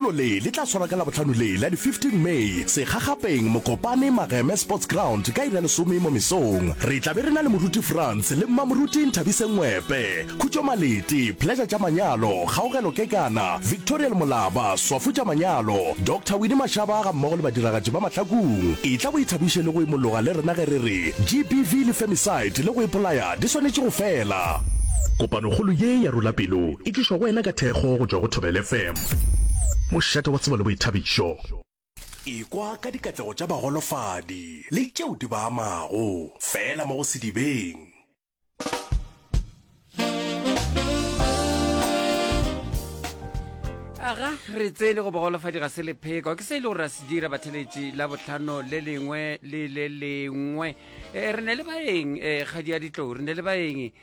Lenyalo le le tla swarwa ka Labohlano le la di 15 May segagapeng Mokopane Mageme Sports Ground ka iri ya lesome mo mesong. Re tla be re na le Moruti Frans le Mmamoruti Nthabiseng Ngwepe, Khutšo Maleti, Pleasure tša Manyalo, Kgaogelo Kekana, Victorial Molaba, Swafo tša Manyalo, Doctor Winnie Mashaba ga mmogo le badiragatši ba Mahlakung. Etla o ithabiše le go imologa le rena ge re re GBV le Femicide le go ipolaya di swanetše go fela. Kopanokgolo ye ya Rula Pelo e tlišwa go wena ka thekgo go tšwa go Thobela FM. Mošate wa tsebo le boithabišo. Ekwa ka dikatlego tša bagolofadi le tšeo di ba amago, fela mo go sedibeng. Aga, re tsene go bogolofadi ga se lepheko ke se e le gore ra se dira batheletši la botlhano le lengwe le le lengwe. Eh, re ne le baeng eh, kgadi ya ditlou re ne le baeng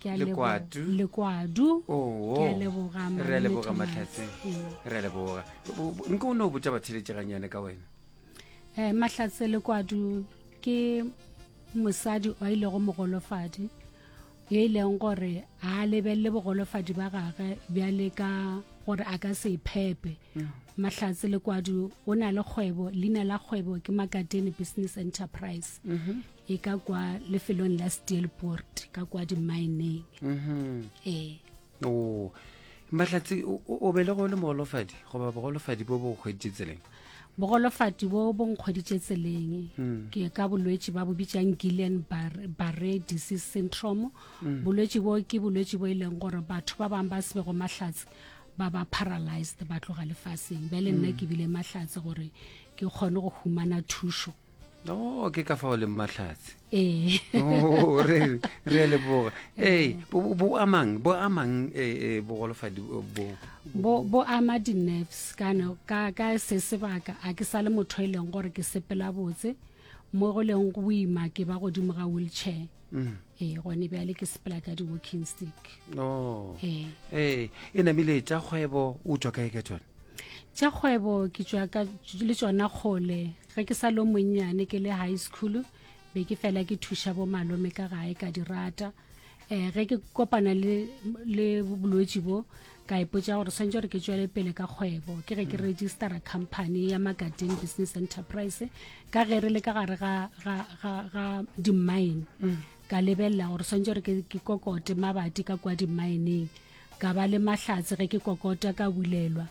Ke a lebo- Lekwatu. lekwadu Oo. Ke a leboga, Malome re a leboga Thomas. matlhatse Mm. re a leboga Bo- bo- nko o ne o botša batheletše gannyane ka wena Eh, mahlatse lekwadu ke mosadi o a ilego mogolofadi yo e leng gore a lebelele bogolofadi ba gage bjale ka gore a ka se iphepe mahlatse lekwadu o na le kgwebo leina la kgwebo ke makatene business enterprise e ka kwa lefelong la steelport ka kwa dimaeneng mm-hmm. ee o mahlatsi o bele go le mogolofadi goba bogolofadi bo bo kgweditše tseleng bogolofadi bo bo nkgweditše tseleng hmm. ke ka bolwetši ba bo bitsang gillian barre disease syndrome hmm. bolwetši bo ke bolwetši bo e leng gore batho ba bangwe ba se bego mahlatsi ba ba paralyzed ba tloga lefaseng bjale nna hmm. ke bile mahlatsi gore ke kgone go humana thušo no ke ka fao leng mahlatse ee oh, re re leboga ee bo amang bo amang eh, eh, bogolofadi eh, bo bo bo ama di-nerves kana ka ka se sebaka a ke sa le motho e leng gore ke sepela botse mo go leng go ima ke ba godimo ga wheelchair mm. ee gone bjale ke sepela ka di-walking stick oh. ee e namile tša kgwebo o tswa kae ka tsone tša kgwebo ke tswa le tsona kgole ge ke sa lo monnyane ke le high school be ke fela ke thuša bo malome ka gae ka di rata um ge ke kopana le bolwetši bo ka ipotsa gore swantse gore ke tswele pele ka kgwebo ke ge ke mm. registera company ya magadin business enterprise ka ge re le ka gare ga dimine mm. ka lebelela gore swantse gore ke kokote mabati ka kwa dimineng ka ba le mahlatse ge ke kokota ka bulelwa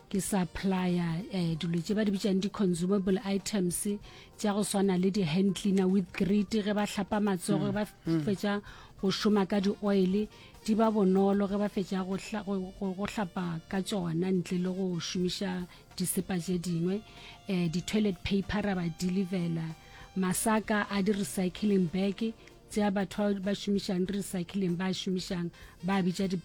ke supplier eh, dilo tše ba di bitšang di-consumable items tša go swana le di-hand cleaner with grit ge ba hlapa matsogo ge ba mm. Mm. fetša go šoma ka di-oil di ba bonolo ge ba fetša go hlapa ka tšona ntle le go šomiša disepa tše dingwe um di-toilet paper ra ba delivela masaka a di-recycling bag tsea batho ba ba šomišang di recycling ba šomišang ba bitša di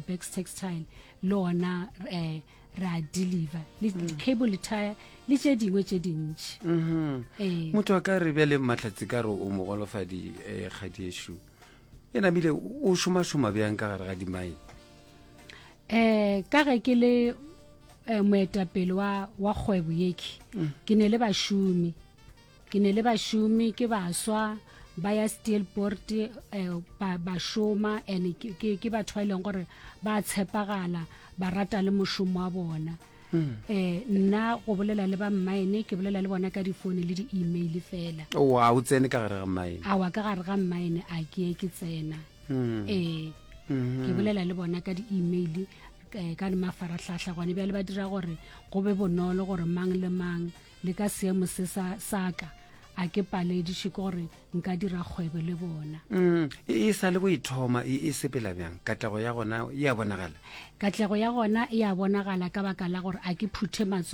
bags eh, uh, textile le ona eh ra deliver le mm. cable le tire le tše dingwe tše dintši mm-hmm. eh. motho a ka re bja le matlhatsi ka re o mogolofadi eh, kgadiešo e namile o šomašoma bjang ka gare ga dimai um ka ge ke le moetapele wa kgwebo yeke mm. ke ne le bašomi ke ne le bašomi ke baswa ba ya steelport um eh, ba, ba šoma and ke, ke, ke batho ba e leng gore ba tshepagala ba rata le mošomo wa bona um nna go bolela le ba mmaene ke bolela le bona ka difoune le di-email fela oa o tsene ka gare ga mmaene awa ka gare ga mmaene a ke ye ke tsena um ke bolela le bona ka di-email eh, ka le mafaratlhatlha gone bjale ba dira gore go be bonolo gore mang le mang le ka seemo se sa saka a ke palediše ke gore nka dira kgwebo le bona mm, e, e sa le go ithoma e, e sepela bjang katlego ya gona e a bonagala katlego ya gona e a bonagala ka baka la gore a ke phuthe matsogo